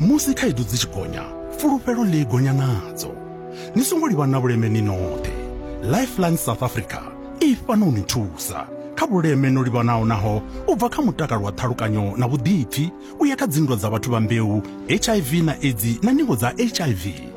Musi khaedu dzi tshi gonya, fulufhelo ḽi gonya nadzo. Ni songo livha na vhuleme ni noṱhe. Lifeline South Africa i fhano u ni thusa kha vhuleme no livhanaho naho u bva kha mutakalo wa ṱhalukanyo na vhuḓipfi u ya kha dzinndwa dza vhathu vha mbeu, HIV na Edzi na ningo dza HIV.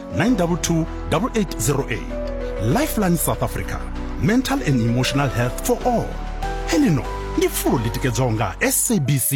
922 8808 lifeline south africa mental and emotional health for all helino ndi fulo ḽi tikedzwaho nga sabc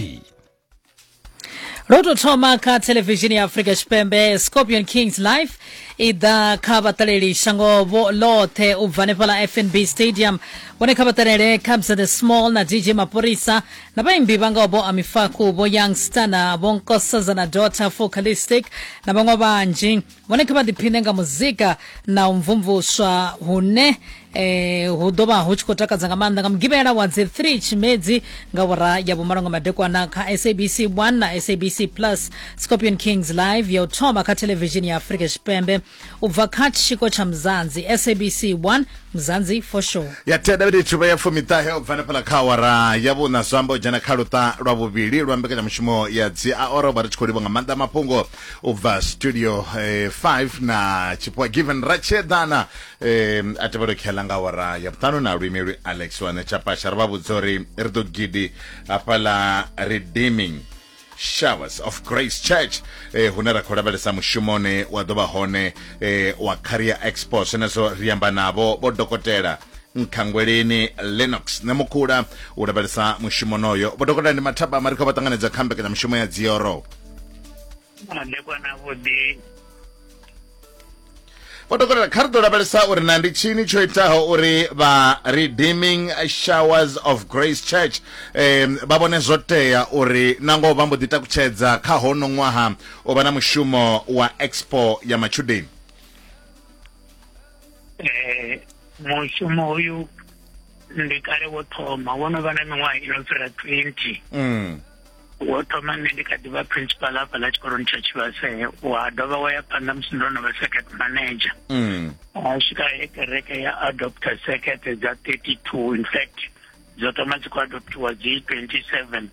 ro tou thoma kha thelevishini ya afrika tshipembe scorpion kings life i ḓa kha vhaṱaleli shangovho ḽoṱhe u bva hanefhaḽa fnb stadium vhone kha vhaṱalele cabs the small na dj mapurisa Na vhaimbi vha ngaho vho Amifaku, vho Young Stunner, vho Nkosazana Daughter, Focalistic na vhaṅwe vhanzhi vhone kha vha ḓiphine nga muzika na u mvumvuswa hune eh, hu ḓo vha hu tshi khou takadza nga maanḓa nga mugivhela wa dzi 3 tshimedzi nga vhora ya vhumalo nga madekwana kha sabc 1 na sabc plus scorpion kings live ya u thoma kha thelevishini ya afurika tshipembe U bva kha tshiko tsha Mzansi, SABC 1, Mzansi for sure. ya thenda vhete tshuvha ya fumiṱahe u bva hanefhala kha awara ya vhuna zwi amba u dzhena kha luṱa lwa vhuvhili lwa mbekanyamushumo ya dzi aora u vha ri tshi khou livha nga maanḓa mafhungo u bva studio 5 na tshipua given ratshedana um, a tevhelo khela nga awara ya vhuṱanu na luimelwi alex wane tshapasha ri vha vhudza uri ri ḓo gidi hafhaḽa redeeming showers of grace church eh, hune ra khou lavhelesa mushumoni wa ḓo vha hone eh, wa career expo zwenezwo ri amba navho vho dokotela nkhangweleni lennox ne mukhula u lavhelesa mushumo noyo vho dokotela ndi mathaba mari khou vha ṱanganedza kha mbekanyamushumo ya dzioro Ndekwana vhuḓi vho dokotela kha ri ḓo lavhelesa uri na ndi tshini tsho itaho uri vha redeeming showers of grace church um vha vhone zwo tea uri na ngoho vha mbo ḓi takutshedza kha hono ṅwaha u vha na mushumo wa expo ya matshudeni eh, mushumo uyu ndi kale wo thoma wo no vha na miṅwaha i no fhira 20 mm. wo thoma nṋe ndi kha ḓi vha principal hafha ḽa tshikoloni tsha tshivhase wa dovha wa ya phanḓa musi ndo no vha circuit manager mm. wa swika he kereke ya adopter circuit dza 32 in fact dzo thoma dzi khou adoptiwa dzi 27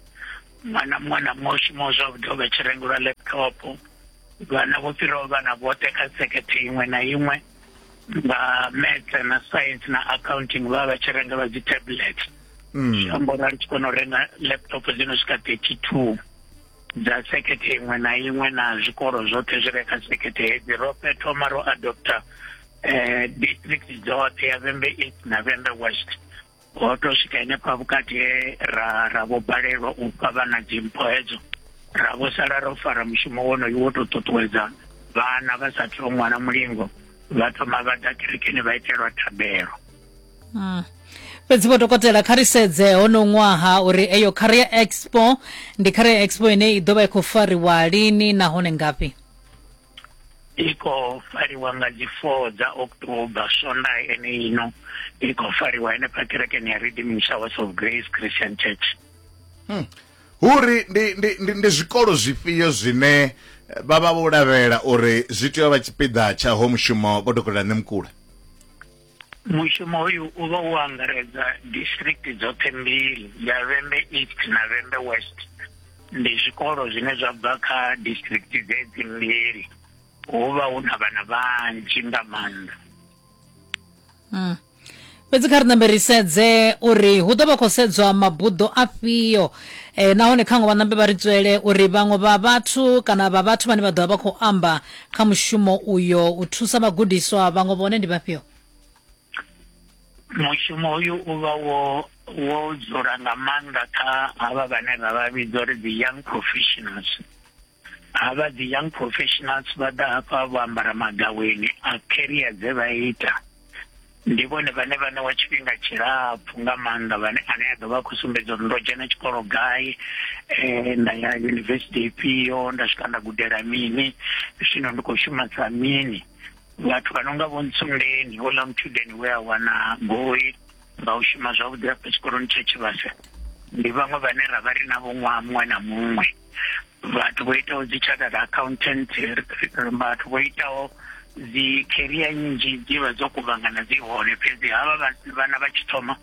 ṅwana muṅwe na muṅwe u shumaho zwavhuḓi o vha tshi rengelwa laptop vhana vho fhiraho vhana vhoṱhe kha circuit iṅwe na iṅwe vha maths na science na accounting vha vha tshi renga vha dzi tablets mm. zwi amba uri a ri tshi kona u renga laptop dzi no swika thirty two dza sekhethe iṅwe na iṅwe na zwikolo zwoṱhe zwi re kha sekhethe hedzi ro thoma ro adopta um district dzoṱhe ya vhembe east na vhembe west ho to swika henefha vhukati he ra ra vho balelwa u fha vhana dzimpho hedzo ra vho sala ro fara mushumo wonoyu wo tou ṱuṱuwedza vhana vha sa thoo ṅwana mulingo vha thoma vha ḓa kerekeni vha itelwa thabelo hmm. fhedzi vho dokotela kha ri sedze hono ṅwaha uri eyo career expo ndi career expo ine i ḓo vha i khou fariwa lini nahone ngafhi i khou fariwa nga dzi four dza october swonda ene ino i khou fariwa henefha kerekeni ya redeeming showers of grace christian church hmm. huri ndi, ndi, ndi, ndi zwikolo zwifhio zwine eh, vha vha vho lavhelela uri zwi tea u vha tshipiḓa tsha ho mushumo vho dokotela ṋemukula Mushumo hoyu u vha u angaredza district dzoṱhe mbili ya Vhembe East na Vhembe West ndi zwikolo zwine zwa bva kha district dzedzi mbili hu vha hu na vhana vhanzhi nga maanḓa mm. fhedzi kha ri nambe ri sedze uri hu ḓo vha khou sedzwa mabuḓo afhio e, nahone khaṅwe vhanambe vha ri tswele uri vhaṅwe vha vhathu kana vha vhathu vhane vha ḓo vha vha khou amba kha mushumo uyo u thusa vhagudiswa vhaṅwe vhone ndi vhafhio mushumo uyu u vha wo wo dzula nga maanḓa kha havha vhane ra vha vhidza uri dzi young professionals havha dzi young professionals vha ḓa hafha vho ambara magaweni a career dze vha ita ndi vhone vhane vha ṋewa tshifhinga tshilapfhu nga maanḓa vhane ane a ḓo vha khou sumbedza uri ndo dzhena tshikolo gai um nda ya yunivesithi ifhio nda swika nda gudela mini zwino ndi khou shuma sa mini vhathu vha no nga vho ntsundeni houḽa mutshudeni we a wana goi nga u shuma zwavhuḓi hafha tshikoloni tsha tshivhasa ndi vhaṅwe vhane ra vha ri na vho ṅwaha muṅwe na muṅwe vhathu vho itaho dzi chartered accountant vhathu vho itaho dzi career nnzhi dzi vha dzo kuvhangana dzi hone fhedzi havha vhana vha tshi thoma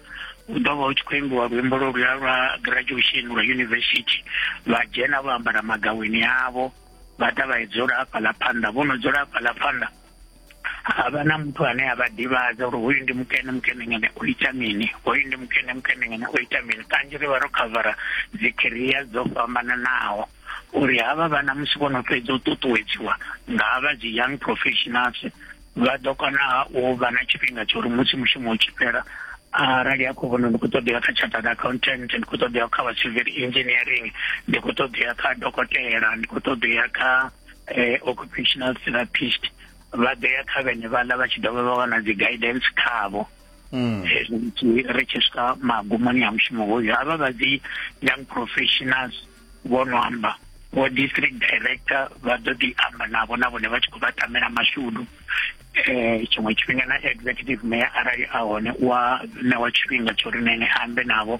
u ḓo vha u tshi khou imbiwa luimbo lwo luya lwa graduation lwa university vha dzhena vho ambara magaweni avho vha ḓa vha dzula hafhaḽa phanḓa vho no dzula hafhaḽa phanḓa havha na muthu ane a vha ḓivhadza uri hoyu ndi mukene mukene ngene o ita mini hoyu ndi mukene mukene ngene o ita mini kanzhi ri vha ro khavara dzikhiria dzo fhambananaho uri havha vhana musi vho no fhedza u ṱuṱuwedziwa nga havha dzi young professionals vha ḓo kona u vha na tshifhinga tsha uri musi mushumo u tshi fhela arali a khou vhona ndi khou ṱoḓea kha chartered accountant ndi khou ṱoḓea kha vha civil engineering ndi khou ṱoḓea kha dokotela ndi khou ṱoḓea kha eh, occupational therapist vha ḓo ya kha vhene vhaḽa vha tshi dovha vha wana dzi guidance khavho mm. eh, ri tshi swika magumoni a mushumo hoyo havha vha dzi young professionals vho no amba vho district director vha ḓo ḓi amba navho na vhone vha tshi khou vha tamela mashudu eh tshiṅwe tshifhinga na executive mayor arali a hone wa ṋewa tshifhinga tsho ri nene ambe navho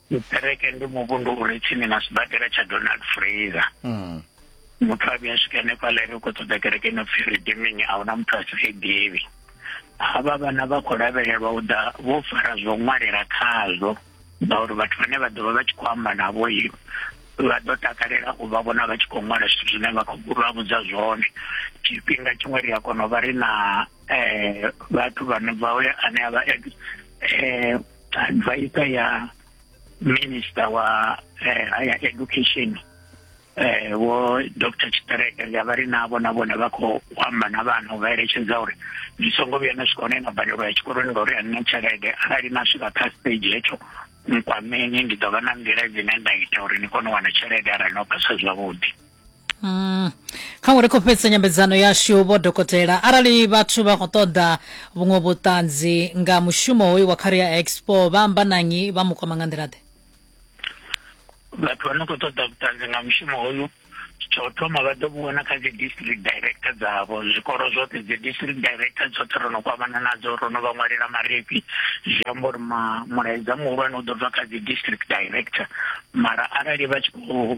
Tshiṱereke ndi muvhundu u re tsini na sibadela tsha Donald Fraser. Mm. Muthu a vhuya swika hanefha ḽa ri khou ṱoḓa kereke ino pfi Redeeming a huna muthu a si i ḓivhi. Havha vhana vha khou lavhelelwa u ḓa vho fara zwo ṅwalela khazwo ngauri vhathu vhane vha ḓovha vha tshi khou amba navho i vha ḓo takalela u vha vhona vha tshi khou ṅwala zwithu zwine vha khou vha vhudza zwone tshifhinga tshiṅwe ri a kona u vha ri na um vhathu vhane vha ane a vha um advisor ya minister wa eh, higher education eh wo Dr Chitarega ya vha ri navho na vhone vha khou amba na vhana u vha eletshedza uri zwi songo vhuya na swika hone na badelo ya tshikoloni ngauri a nina tshelede arali na swika kha stage hetsho nkwameni ndi ḓo vha na nḓila dzine nda ita uri ni kone u wana tshelede arali no phasa zwavhuḓi Mm. kha uri khou fhedzisa nyambedzano yashu vho dokotela arali vhathu vha khou ṱoḓa vhuṅwe vhuṱanzi nga mushumo hoyu wa career expo vha amba nanyi vha mu kwama nga nḓila-ḓe vhathu vha no khou ṱoḓa vhuṱanzi nga mushumo hoyu tsha u thoma vha ḓo vhona kha dzi district director dzavho zwikolo zwoṱhe dzi district director tshoṱhe ro no kwamana nadzo ro no vha ṅwalela marifhi zwi amba uri mulaedza muhulwane u ḓo bva kha dzi district director mara arali vha tshi khou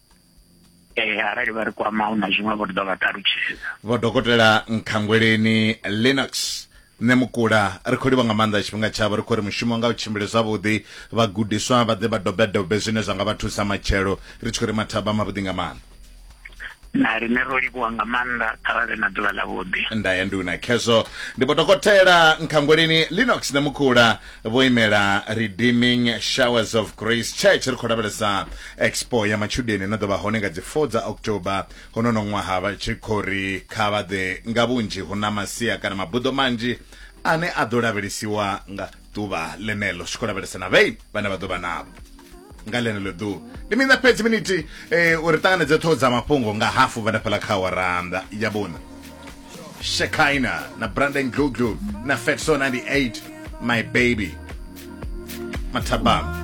ee eh, arali vha ri kwama hu na zwiṅwe vho ri ḓo vha ṱalutshedza vho dokotela nkhangweleni linux nṋe mukula ri khou livha nga maanḓa tshifhinga tshavho ri khou ri mushumo nga u tshimbile zwavhuḓi vhagudiswa vha ḓe vha dobedobe zwine zwa nga vha thusa matshelo ri tshi khou ri mathaba mavhuḓi nga maanḓa na rine ro livhuwa nga maanḓa arali na ḓuvha ḽavhuḓi nda ya nduna khezwo ndi vho dokotela nkhangweleni linox ṋemukula vho imela redeeming showers of grace church ri khou lavhelesa expo ya matshudeni no ḓo vha hone nga dzi 4 dza october honono ṅwaha vha tshi khou ri kha vha ḓe nga vhunzhi hu na masia kana mabuḓo manzhi ane a ḓo lavhelesiwa nga ḓuvha ḽeneḽo zwi khou lavhelesa na vhei vhane vha ḓo vha navho nga ḽeneḽo ḓuvha ndi mina fhedzi miniti um uri ṱanganedze ṱhoho dza mafhungo nga hafu vha nafhaḽa kha waranda ya vhuna shekina na brandon gluglu na fetso 98 my baby mathabama